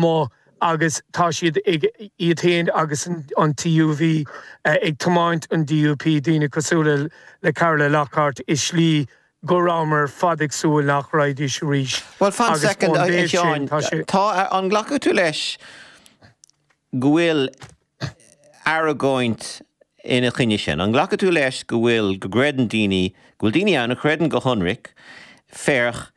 mó agus tá siad ag, iad féin agus an TUV, ag tiomáint an DUP, daoine cosúil le Carla Lockhart, i slí go rabhamar ar fad ag súil nach raghaidís arís. Bhuel, fan soicind, a Sheáin, tá, an nglacfadh tú leis go bhfuil argóint ina choinne sin? An nglacfadh tú leis go bhfuil, go gcreideann daoine, go bhfuil daoine ann a chreideann go hionraic, féach,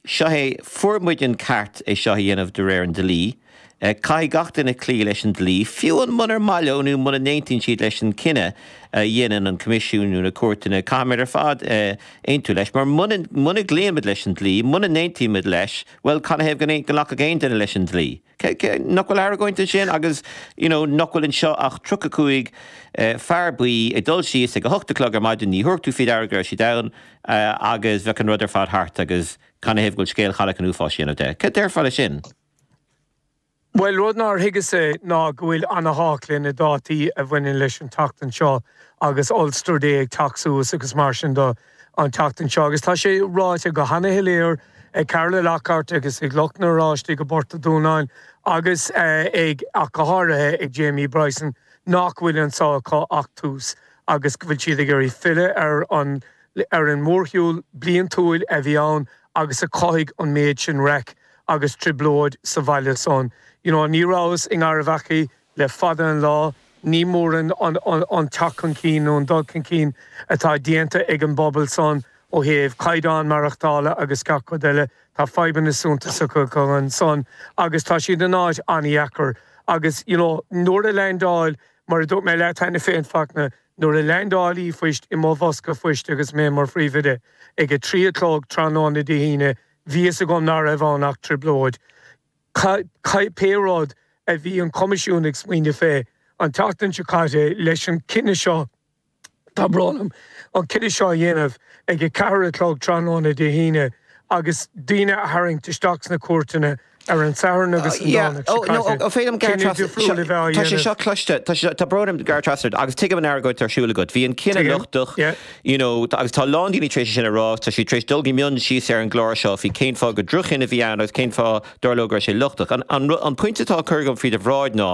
Seo é, fuair muid an ceart é seo a dhéanamh de réir an dlí. Caithfidh gach duine cloí leis an dlí, fiú muna maith leo é nó muna n-aontaíonn siad leis an cinneadh a dhéanann an Coimisiún nó na cúirteanna. Caithfimid ar fad aontú leis, mar muna gcloímid leis an dlí, muna n-aontaímid leis, bhuel, canathaobh go nglacfadh aon duine leis an dlí? Nach bhfuil argóint ansin agus you know nach bhfuil anseo ach tríocha cúig fear buí ag dul síos ag a hocht a chlog ar maidin, ní thabharfadh tú fiú faoi deara go raibh siad ann fiú amháin agus bheadh an rud ar fad thart agus canathaobh go bhfuil scéal Chailleach an Uafáis a dhéanamh de? Cad déarfá leis sin? Bhuel, rud nár thuigeas-sa ná go bhfuil ana-thábhacht leis na dátaí a bhaineann leis an tseachtain seo agus Ulster Day ag teacht suas agus mar sin do. an tseachtain seo agus tá sé ráite go hana-shoiléir ag Carla Lockhart agus ag lucht na n-Oráisteach i bPort an Dúnáin agus ag, ach go háirithe, ag Jamie Bryson nach bhfuil anseo acu ach tús agus go bhfuil siad ag iarraidh filleadh ar an, ar an mórshiúl bliantúil a bhí ann agus a chothaigh an méid sin raic agus trioblóid sa bhaile san. You know, ní rabhas i nGairbheachaí Le fada an lá, ní mór é an teacht chun cinn nó an dul chun cinn atá déanta ag an bpobal san ó thaobh caighdeán maireachtála agus gach rud eile. Tá fadhbanna suntasacha acu ansan agus tá siad in áit an-dheacair. Agus, you know, nuair a leaindeáil, mar a dúirt mé leat cheana féin, Fachtna, nuair a leaindeáil ríomhphost i mo bhosca phoist agus mé mar phríomhoide, ag a trí a chlog tráthnóna Dé hAoine, bhí fhios agam ná raibh ann ach trioblóid. Cé rud a bhí an Coimisiún ag smaoineamh faoi an tseachtain seo caite leis an chinneadh seo? Tá brón orm, an cinneadh seo a dhéanamh ag a ceathair a chlog tráthnóna Dé hAoine agus daoine a tharraingt isteach sna cúirteanna ar an Satharn agus an Domhnach seo caite, cinneadh difriúil a bheith á dhéanamh. Tá sé seo cloiste, tá brón orm gur thrasnaíos ort, agus tuigim an argóint atá ar siúl agat. Bhí an cinneadh lochtach. you know tá agus tá a lán daoine tar éis é sin a rá tá siad tar éis dul go mion síos ar an gclár seo faoi cén fáth gur drochchinneadh a bhí ann agus cén fáth dar leo go raibh sé lochtach an an rud an pointe atá á cur agam faoi do bhráid ná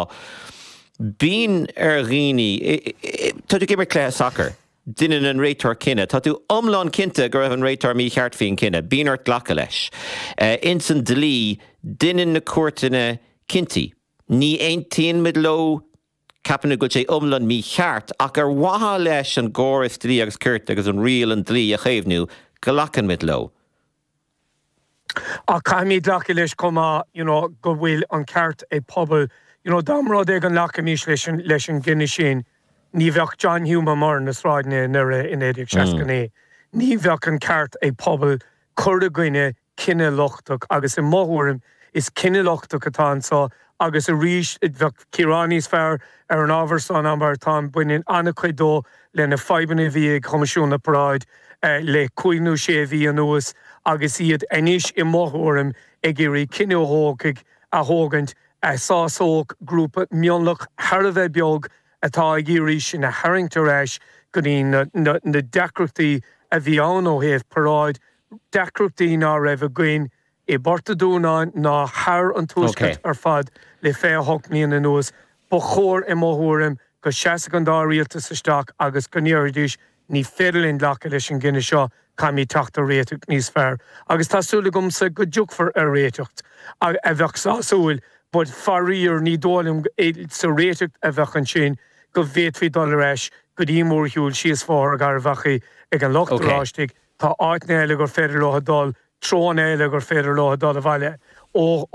bíonn ar dhaoine i i tá tú ag imirt cluiche sacair deineann an réiteoir cinneadh tá tú iomlán cinnte go raibh an réiteoir mícheart faoin cinneadh bíonn ort glacadh leis eh ins an dlí deineann na cúirteanna cinntí ní aontaíonn muid leo Ceapaim go bhfuil sé iomlán mícheart, ach ar mhaithe leis an gcóras dlí agus cirt agus riail an dlí a chaomhnú, go nglacaimid leo. Ach caithfimid glacadh leis chomh maith you know go bhfuil an ceart ag pobal you know dá mba rud é go nglacfaimis leis an gcinneadh sin, ní bheadh John Hume amach ar na sráideanna i nDoire i 1969. Ní bheadh an ceart ag pobal cur i gcoinne cinneadh lochtach agus i mo thuairim is cinneadh lochtach atá anseo agus arís ba cheart cíoradh níos fearr ar an ábhar seo ná mar atá ann. Baineann an-chuid dó leis na fadhbanna a bhí ag Coimisiún na bParáidí le cúig nó sé mhí anuas agus iad anois i mo thuairim ag iarraidh cinneadh a thógfaidh, a thógaint, a shásódh grúpa mionlach thar a bheith beag atá ag iarraidh sinn a tharraingt ar ais go dtí na deacrachtaí a bhí ann ó thaobh paráid na. deacrachtaí ná raibh againn i bPort a' Dúnáin ná sa tuaisceart ar fad le 28 mbliana anuas. Ba chóir, i mo thuairim, go seasfadh an dá rialtas isteach agus go ndéarfaidís, 'Ní féidir linn glacadh leis an gcinneadh seo, caithfimid teacht ar réiteach níos fearr. Agus tá súil agamsa go dtiocfar ar réiteacht a bheadh sásúil. But, faraor, ní dóigh liom, sa réiteacht a bheadh ansin, go bhféadfaí dul ar ais go dtí an mórshiúl síos Bhóthar Gharbh Achaidh ag an Lucht Oráistigh. tá áiteanna eile gur féidir leo dul, treoanna eile gur féidir leo dul abhaile ó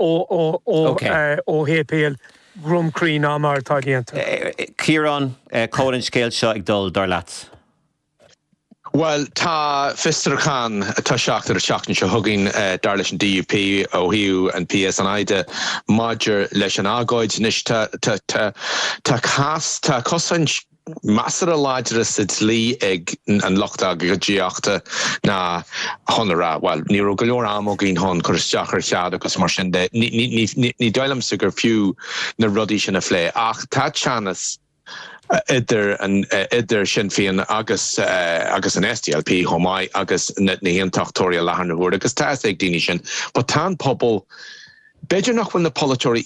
shéipéal Dhroim Crí ná mar atá déanta. Ciarán, cá bhfuil an scéal seo ag dul, dar leat? Bhuel, tá fiosrúchán ag toiseacht ar an tseachtain seo chugainn, dar leis an DUP, ó thaobh an PSNI de, maidir leis an agóid. Anois, tá cás, tá cosaint. measartha láidir sa dlí ag an lucht agóidíochta ná chun a rá, bhuel, ní raibh go leor ama againn chun cur isteach ar chead agus mar sin de. Ní dóigh liomsa gur fiú na rudaí sin a phlé. Ach tá teannas idir idir Sinn Féin agus agus an SDLP chomh maith agus na hAontachtóirí i láthair na huaire agus tá fhios ag daoine sin. But tá an pobal, b'fhéidir nach bhfuil na polaiteoirí